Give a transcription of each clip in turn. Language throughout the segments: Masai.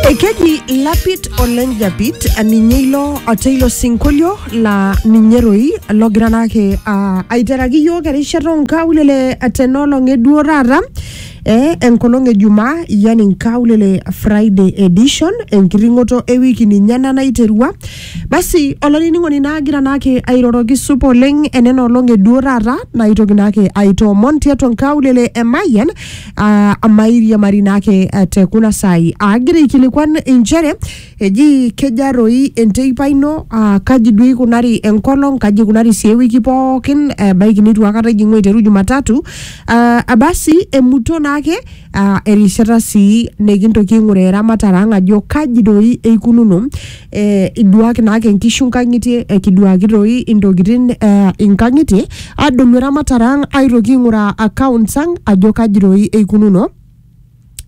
Ekeji Lapit Oleng Japit ninye ilo ote ilo sinkolio laa ninye roi logira naake ah, aiteraki iyiook erishata onkaulele tenolong eduo taata eh, enkolong ejumaa yani nkaulele Friday edition enkiring'oto ewiki ninye ena naiterua basi olainining'oni naagira naake airoroki supa oleng enena olong eduo taata naitoki naake aitoomon tiatua nkaulele e Mayian ah, amairiamari naake eh, te kuna saai aagira aikilikuan inchere eji keja toi enteipa ino ah, kaji duo ikunari enkolong kaji ikunari sii ewiki pookin ebaiki nitu akata ijing'u aiteru jumatatu ah, abasi emuto naake ah, erishata sii nikintoki aing'uraa eramatare ang ajo kaji doi eikununo eh, iduaki naake inkishu nkang'itie ekiduaki toi intokitin eh, inkang'itie adolu eramatare ang aitoki aing'uraa accounts ang ajo kaji toi eikununo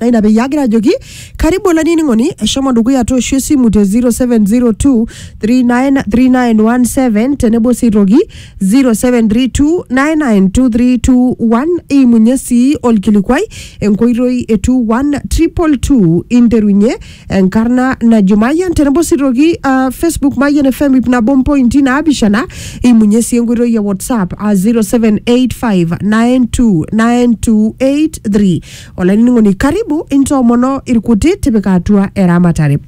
na ina peyie agira ajoki karibu olainining'oni eshomo dukuya tooshu esimu te 0702 393917 tenebo sii toki 0732992321 iimunye sii olkilikuai enkoitoi e 21222 interunye enkarna najo Mayian tenebo sii toki uh, Facebook Mayian FM ip nabo mpointi naapishana imunye sii enkoitoi e WhatsApp a 0785929283 olainining'oni karibu intoomono irkuti tipika atua eramatare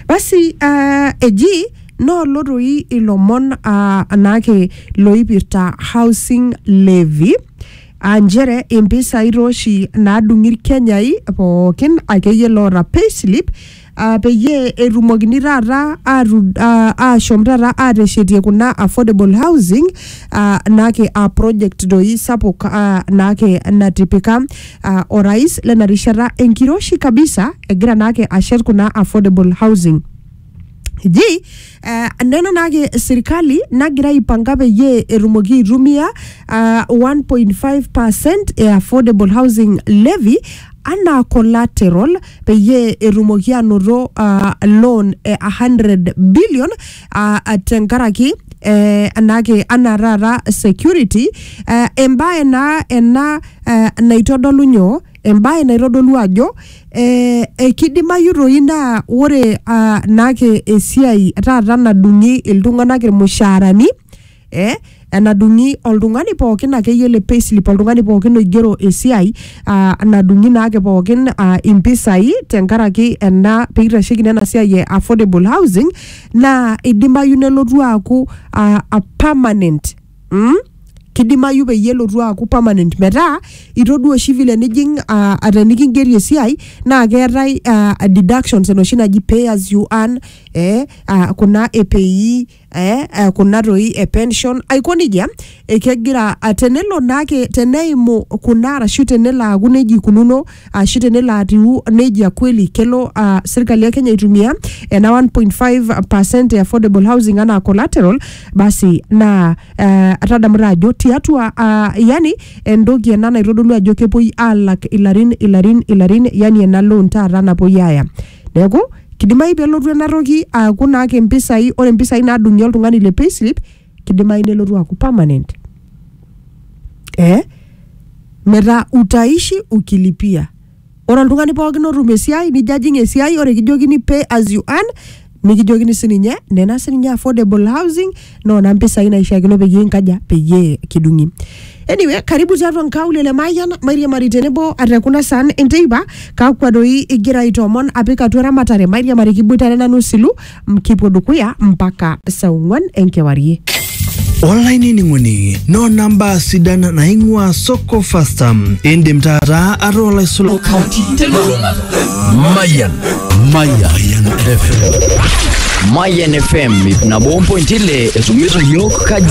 basi uh, eji noolo toi ilomon uh, naake loipirta housing levy aa nchere impisai taa oshi naadung'i irkenyai pookin akeyie loota payslip ah, peyie etumokini taata atu- ah, aashom taata aateshetie kuna affordable housing ah, naake aa project doi sapuk ah, naake natipika ah, orais lena rishata enkiroshi kabisa egira naake ashet kuna affordable housing. Ji eh, nena naake serikali nagira aipanga peyie etumoki aitumia ah, 1.5% e affordable housing levy anaa collateral peyie etumoki anoto ah, loan e 100 billion ah, ah, tenkaraki eh, anake anaa taata security eh, embae naa ena eh, naitodolu nyoo embae naitodolu ajo ee kidimayu toi naa ore aa naake esiai taata nadung'i iltung'anak irmushaarani ee enadung'i oltung'ani pookin akeyie le payslip oltung'ani pookin oigero esiai aa nadung'i naake pookin aa impisai tenkaraki ena piitasheki naa ena siai e affordable housing naa idimayu nelotu aaku aa permanent mm? kidimayu peyie elotu aaku permanent metaa itodua oshi vile nijing uh, atenikingeri esiai naa keetae uh, deductions enoshi naji pay as you earn eh, uh, kuna epei eh, uh, kuna toi e pension aiko nejia eh, kegira uh, tenelo naake teneimu kuna arashu tenelo aaku nejia ikununo ashu tenelo atiu nejia kweli kelo uh, serkali ya Kenya aitumia ena 1.5% e affordable housing anaa collateral basi naa uh, tadamuta ajo tiatua uh, yani entoki ena naitodolu ajo kepuoi alak ilarin ilarin ilarin yani ena loan taata napuoi aya neeku kidimayu pelotu ena toki aaku naake mpisai ore mpisai nadung'i oltung'ani le payslip kidimayu nelotu aaku permanent eh? metaa utaishi ukilipia ore oltung'ani pookin otum esiai nijo ajing esiai ore kijokini pay as you earn nikijokini sininye nena sininye affordable housing noona mpisai naishiakino peyie inkaja peyie kidung'i anyway karibu tiatua nkaulele mayian mairiamari tenebo ate kuna san enteipa kakwa doi igira aitoomon apik atua eramatare mairiamari kiboitare nanu silu M- kipuo dukuya mpaka saa ong'uan enkewarie olainining'oni noona mbaa sidan naing'ua soko fasta indim taata ataa olaisulani kaunti telulung'ata mayan mayan fm Mayan FM ip nabo ompointi ile esumiso yiok kaji